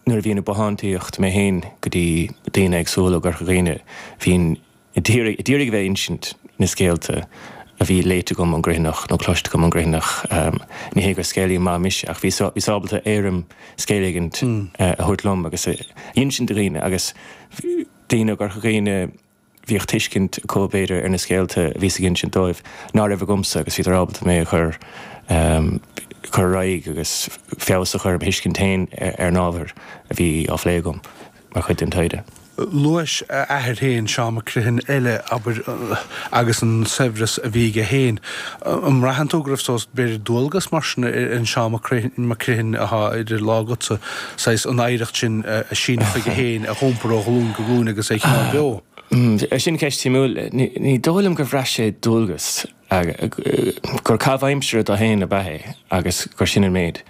Nuair a bhínn ag bothántaíocht mé féin go dtí daoine éagsúla i gCorca Dhuibhne, bhínn ag iarraidh a bheith ag insint na scéalta a bhí léite agam ón gCriomhthanach nó cloiste agam ón gCriomhthanach. Ní hé gur scéalaí maith mise ach bhíos ábalta éirim scéil éigint a thabhairt liom agus a insint do dhaoine agus daoine i gCorca Dhuibhne, Bhíodh tuiscint acu, b'fhéidir, ar na scéalta a bhíos ag insint dóibh ná raibh agamsa agus bhíodar ábalta mé a chur ar aghaidh agus feabhas a chur ar mo thuiscint féin ar an ábhar a bhí á phlé agam mar chuid den taighde. Luais a athair féin, Seán Mac Criomhthain eile, abair, agus an saibhreas a bhí aige féin. An mbraitheann tú go raibh, b'fhéidir, dualgas mar sin ar an Seán Mac Criomhthain atá idir lámha agatsa? saghas, an oidhreacht sin a síneadh chuige féin, a dh'iompar ó ghlúin go glúin agus é a choinneáil beo. Hum, sin ceist shuimiúil. Ní dóigh liom gur bhraith sé dualgas, gur caitheamh aimsire dó féin ab ea é agus gur sin an méid.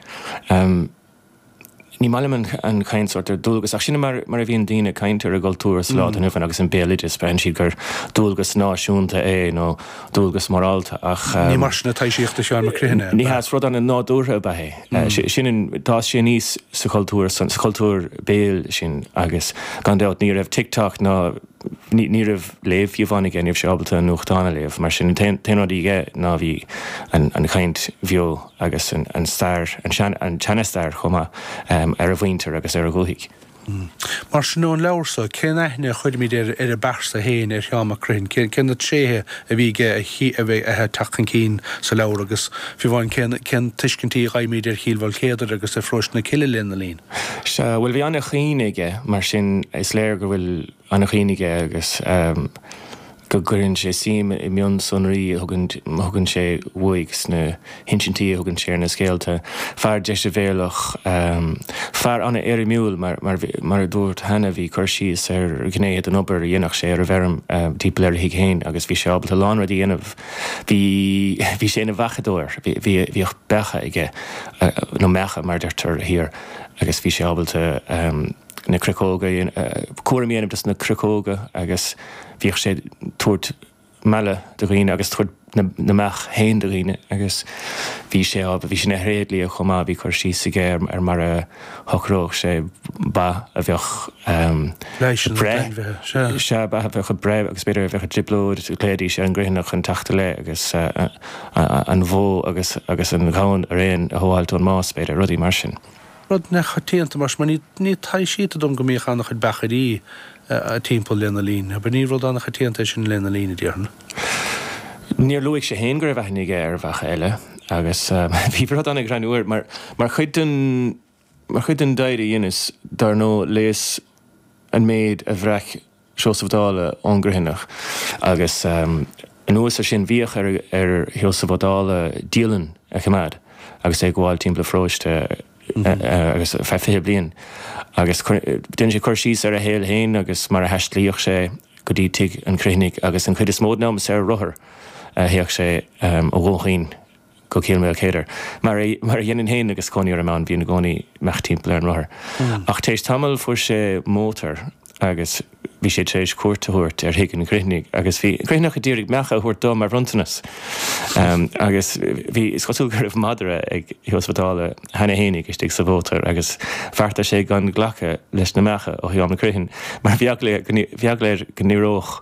Ní maith liom an chaint sórt ar dualgas ach sin mar a bhíonn daoine ag caint ar an gcultúr sa lá atá inniu ann agus an béaloideas, braitheann siad gur dualgas náisiúnta é nó dualgas morálta ach. Ní mar sin atá i Seán Mac Criomhthain. Ní hea, saghas rud ana-nádúrtha ab ea é. D'fhás sé aníos sa chultúr, sa chultúr béil sin agus gan dabht ní raibh TikTok ná, ní raibh léamh fiú amháin aige, ní raibh sé ábalta an nuachtán a léamh mar sin. An t-aon rud a bhí aige ná bhí an chaint bheo agus an stair, an seana-stair chomh maith, ar a mhuintir agus ar a dhúthaigh. Umm. Mar sin, ón leabhar seo, cén aithne a chuirimid ar an bpearsa fhéin, ar Sheán Mac Criomhthain? Cé cé na tréithe a bhí aige atá ag teacht chun cinn sa leabhar agus, fiú amháin, cén cén tuiscintí a dh'fhaighimid ar Chill Mhaoilchéadair agus ar Pharóiste na Cille lena linn? Sea. Bhuel, bhí ana-chuimhne aige, mar sin is léir go bhfuil. an-chuimhne aige agus go gcuireann sé suim i mionsonraí a thugann sé uaidh, sna hinsintí a thugann sé ar na scéalta. Fear deisbhéalach, fear an-éirimiúil, mar a dúrt cheana. Bhí cur síos ar ghnéithe den obair a dhéanfadh sé ar an bhfeirm timpeall ar a thigh féin agus bhí sé ábalta a lán rudaí a dhéanamh. Bhí sé ina bheachadóir, bhíodh beacha aige, nó meacha mar a deirtear thiar, agus bhí sé ábalta, na cruiceoga, cúram a dhéanamh des na cruiceoga agus bhíodh sé tabhairt meala do dhaoine agus tabhairt na mbeach féin do dhaoine agus bhí sé á, bhí sé ina thréidlia chomh maith, bhí cur síos aige ar mar a shocródh sé ba a bheadh ag breith, sea, ba a bheadh ag breith agus b'fhéidir a bheadh i dtrioblóid, ghlaoidís ar an gCriomhthanach chun teacht i leith agus an bhó agus an gamhain araon a shábháilt ón mbás, b'fhéidir, rudaí mar sin. Rud neamhchoitianta, mar sin, mar ní taibhsítear dom go mbíodh an-chuid beachairí timpeall lena linn. Abair, ní rud an-choitianta é sin lena linn, a déarfainn. Níor luaigh sé féin go raibh aithne aige ar bheacha eile, agus bhí rud an-ghreannmhar air, mar mar chuid den, mar chuid den dair a dheineas, dar ndóigh, léas an méid a bhreac Seosamh Ó Dála ón gCriomhthanach agus anuas ar sin bhíodh ar Sheosamh Ó Dála dialann a choimeád agus é ag gabháil timpeall an pharóiste agus feadh fiche bliain agus déanadh sé cur síos ar a shaol féin agus mar a thaistealaíodh sé go dtí tigh an Chriomhthanaigh agus an chuid is mó den am is ar rothar a théadh sé ó Dhún Chaoin go Cill Maoilchéadair, mar a mar a dheininn féin agus cónaí orm ann, bhínn i gcónaí ag imeacht timpeall ar an rothar. Ach tar éis tamaill fuair sé mótar agus bhí sé tar éis cuairt a thabhairt ar thigh an Chriomhthanaigh agus bhí an Criomhthanach a d'iarraidh meacha a thabhairt dó mar bhronntanas. Agus bhí, is cosúil go raibh madra ag Sheosamh Ó Dála cheana féin istigh sa mhótar agus bheartaigh sé gan glacadh leis na meacha ó Sheán Mac Criomhthain mar bhí eagla air go n-éireodh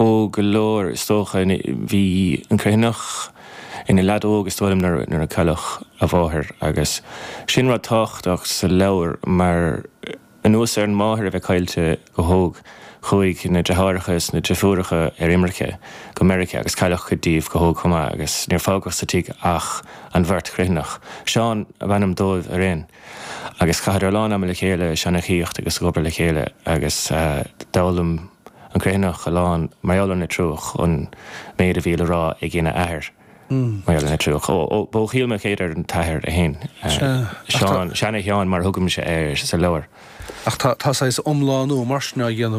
Ó, go leor, is dócha. Bhí an Criomhthanach ina leaid óg, is dóigh liom, nuair a cailleadh a mháthair, agus sin rud tábhachtach sa leabhar, mar anuas ar an máthair a bheith caillte go hóg, chuaigh na deartháireacha is na deirfiúracha ar imirce go Meiriceá, agus cailleadh cuid díobh go hóg chomh maith, agus níor fágadh sa tigh ach an bheirt Chriomhthanach. Seán ab ainm dóibh araon. Agus chaitheadar a lán ama le chéile ag seanchaíocht agus ag obair le chéile agus d'fhoghlaim an Criomhthanach a lán mar gheall ar an Leitriúch, an méid a bhí le rá aigena athair mar gheall ar an Leitriúch. Ó, ó, b'ó Chill Maoilchéadair an t-athair é fhéin, Seán, Seana-Sheán mar thugaimse air sa leabhar. Ach tá saghas iomlánú mar sin á dhéanamh.